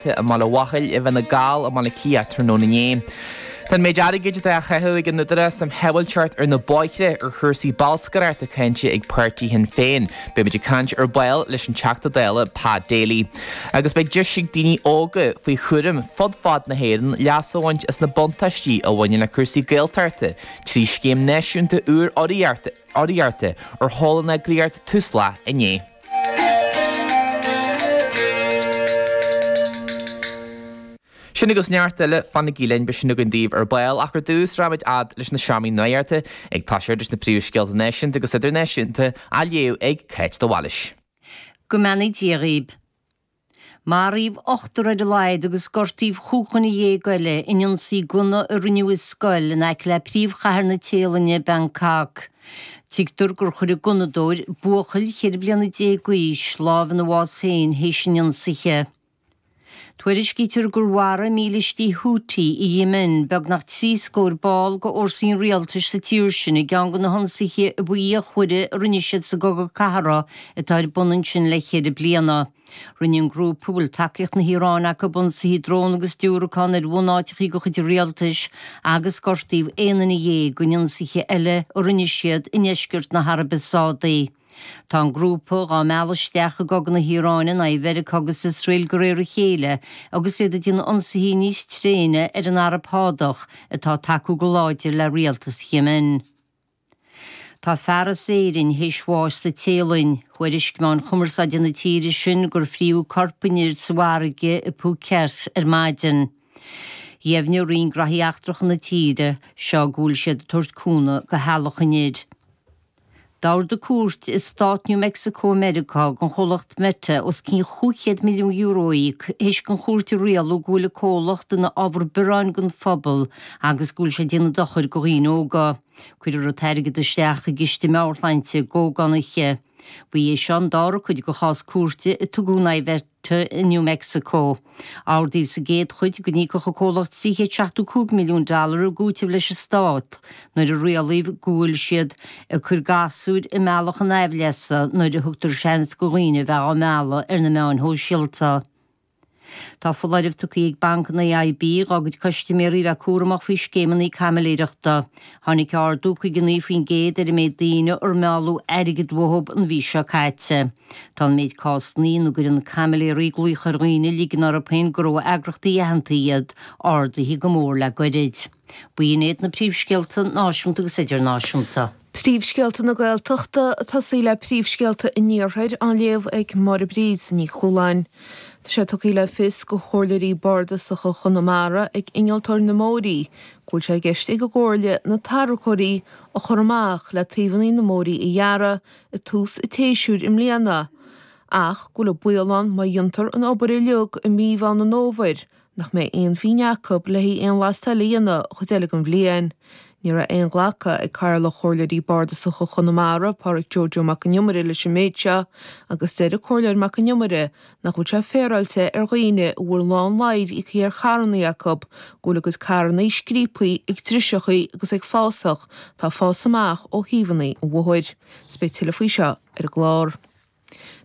te i mBaile Mhichil i bhFine Gall i mBaile Átha Cliath tráthnóna inné. Tá an méid airgid atá á chaitheamh ag an Údarás um Shábháilteacht ar na bóithre ar chúrsaí bolscaireachta cáinte ag páirtí Shinn Féin. Beidh muid ag caint ar ball leis an Teachta Dála Pa Daly. Agus beidh deis ag daoine óga faoi chúram fud fad na hÉireann leas a bhaint as na buntáistí a bhaineann le cúrsaí Gaeltachta trí scéim náisiúnta úr urraíochta ar sheol an eagraíocht Tusla inné. Sin agus neart eile, fanaigí linn, beidh sin againn daoibh ar ball, ach ar dtús, rachaimid fhad leis na seomraí nuachta, ag toiseacht leis na príomhscéalta náisiúnta agus idirnáisiúnta, á léamh ag Cáit de Bhailís. Go mbeannaí Dia dhaoib. Maraíodh ochtar ar a laghad agus gortaíodh chúig dhuine dhéag eile in ionsaí gunna a rinneadh i scoil in aice le príomhchathair na Téalainne, Bangkok. Tuigtear gur chuir an gunnadóir, buachaill ceithre bliana déag d'aois, lámh ina bhás féin théis an ionsaithe. Tuairiscítear gur mharaigh mílistigh Houthi i Yemen beagnach trí scór ball de fhórsaí an rialtais sa tír sin i gceann de na hionsaithe ab fhíochmhaire a rinne siad sa gcogadh cathartha atá ar bun ansin le ceithre bliana. Rinne an grúpa a bhfuil tacaíocht na hIaráine acu ionsaithe drón agus diúracán ar bhunáiteachaí de chuid an rialtais agus gortaíodh aon duine dhéag in ionsaithe eile a rinne siad i ndeisceart na hAraibe Sádaí. Tá an grúpa dhá mealladh isteach i gcogadh na hIaráine in aghaidh Mheiriceá agus Iosrael de réir a chéile agus iad ag déanamh ionsaithe níos tréine ar an Araib Shádach atá ag tacú go láidir le rialtas Yemen. Tá fear as Éirinn théis bháis sa Téalainn. Thuairisc meáin chumarsáide na tíre sin gur frítheadh corp an fhir sa bhfarraige i Phuket ar maidin. Dheimhnigh roinn graithí eachtracha na tíre seo go bhfuil siad ag tabhairt cúnamh do theaghlach an fhir. D'ordaigh cúirt i stát New Mexico i Meiriceá don chomhlacht Meta os cionn €500 milliún a íoc théis don chúirt a rialú go bhfuil an comhlacht ina ábhar bearráin don phobal agus go bhfuil sé ag déanamh dochair do dhaoine óga. Cuirfear an t-airgead isteach i gciste meabhairshláinte i gCo. Connachtha. Ba é seo an dara cuid de chás cúirte a tugadh in aghaidh Mheta i New Mexico. Ordaíodh sa gcéad chuid go n-íocfadh an comhlacht 375 milliún dollar i gcúiteamh leis an Stát nuair a rialaíodh go bhfuil siad ag cur gasúir i mbealach a n-aimhleasa nuair a thugtar seans do dhaoine a bheith á mealladh ar na meáin shóisialta. Tá foláireamh tugtha ag Banc an AIB dhá gcuid custaiméirí a bheith cúramach faoi scéimeanna caimiléireachta. Tháinig ardú 59% ar an méid daoine ar mealladh airgead uathu an mhí seo caite. Tá an méid cásanna ina gcuireann caimiléirí glaoch ar dhaoine ag ligean orthu féin gurb eagraíochtaí aitheanta iad ardaithe go mór le goirid. B'in iad na príomhscéalta náisiúnta agus idirnáisiúnta. Príomhscéalta na Gaeltachta, tosaigh le príomhscéalta an Iarthair, á léamh ag Máire Bríd Ní Chualáin. Tá sé tugtha le fios do chomhairleoirí bardasacha Chonamara ag Innealtóir na mBóithrí go bhfuil sé i gceist ag an gComhairle na tarracóirí a chur amach le taobhanna na mbóithrí a ghearradh ag tús an tséasúir i mbliana ach go bhfuil an baol ann má dhéantar an obair uilig i mí Mheán an Fhómhair nach mbeidh aon phínne acu le haghaidh aon leaisteáil a dhéanamh an chuid eile den bhliain. Ní raibh aon ghlacadh ag Cathaoirleach Chomhairleoirí Bardasacha Chonamara, Pádraig Joe Joe Mac an Iomaire leis an méid seo agus deir an Comhairleoir Mac an Iomaire nach bhfuil sé féaráilte ar dhaoine a bhfuil a lán airgid íocaithe ar charrannaí acu go bhfuil a gcuid carrannaí scríobtha ag driseacha agus ag fásach tá fás amach ó thaobhanna an bhóthair. Is beidh tuilleadh faoi seo ar an gclár.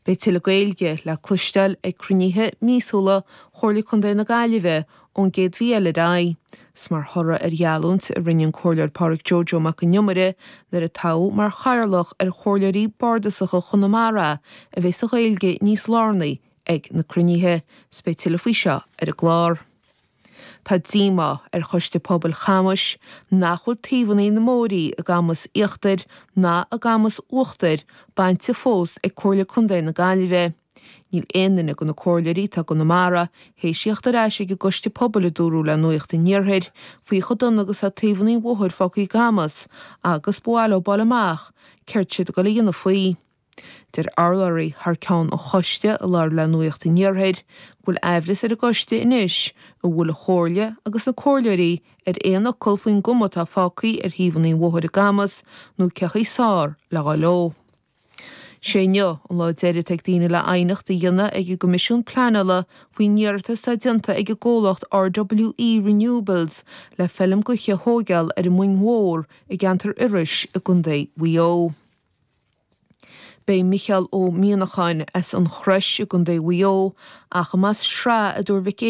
Beidh tuilleadh Gaeilge le cloisteáil ag cruinnithe míosúla Chomhairle Contae na Gaillimhe ón gcéad mhí eile ar aghaidh. Is mar thoradh ar gheallúint a rinne an Comhairleoir Pádraig Joe Joe Mac an Iomaire nuair a toghadh mar chathaoirleach é ar Chomhairleoirí Bardasacha Chonamara a bheas an Ghaeilge níos lárnaí ag na cruinnithe. Beidh tuilleadh faoi seo ar an gclár. Tá díomá ar Choiste Pobail Chamuis nach bhfuil taobhannaí na mbóithrí i gCamus Íochtair ná i gCamus Uachtair bainte fós ag Comhairle Contae na Gaillimhe. Níl aon duine de na comhairleoirí atá i gConamara théis theacht ar ais ag an gCoiste Pobail a dúradh le Nuacht an Iarthair faoi chomh dona agus atá taobhannaí an bhóthair fágtha i gCamus agus ba mhaith leo a fháil amach céard atá siad ag goil a dhéanamh faoi. Deir urlabhraí thar ceann an choiste a labhair le Nuacht an Iarthair go bhfuil aimhreas ar an gcoiste anois an bhfuil an Chomhairle agus na comhairleoirí ar nós cuma faoin gcuma atá fágtha ar thaobhanna an bhóthair i gCamus nó cén chaoi is fearr le rá leo. Sé inniu an lá deiridh atá ag daoine le aighneacht a dhéanamh ag an gCoimisiún Pleanála faoin iarratas atá déanta ag an gcomhlacht RWE Renewables le feilm gaoithe a thóigeáil ar an Muing Mhór i gceantar Iorrais i gContae Mhaigh Eo. Beidh Micheál Ó Mianacháin as An Chrois i gContae Mhaigh Eo ach i Mas Srath a dúirt Mhic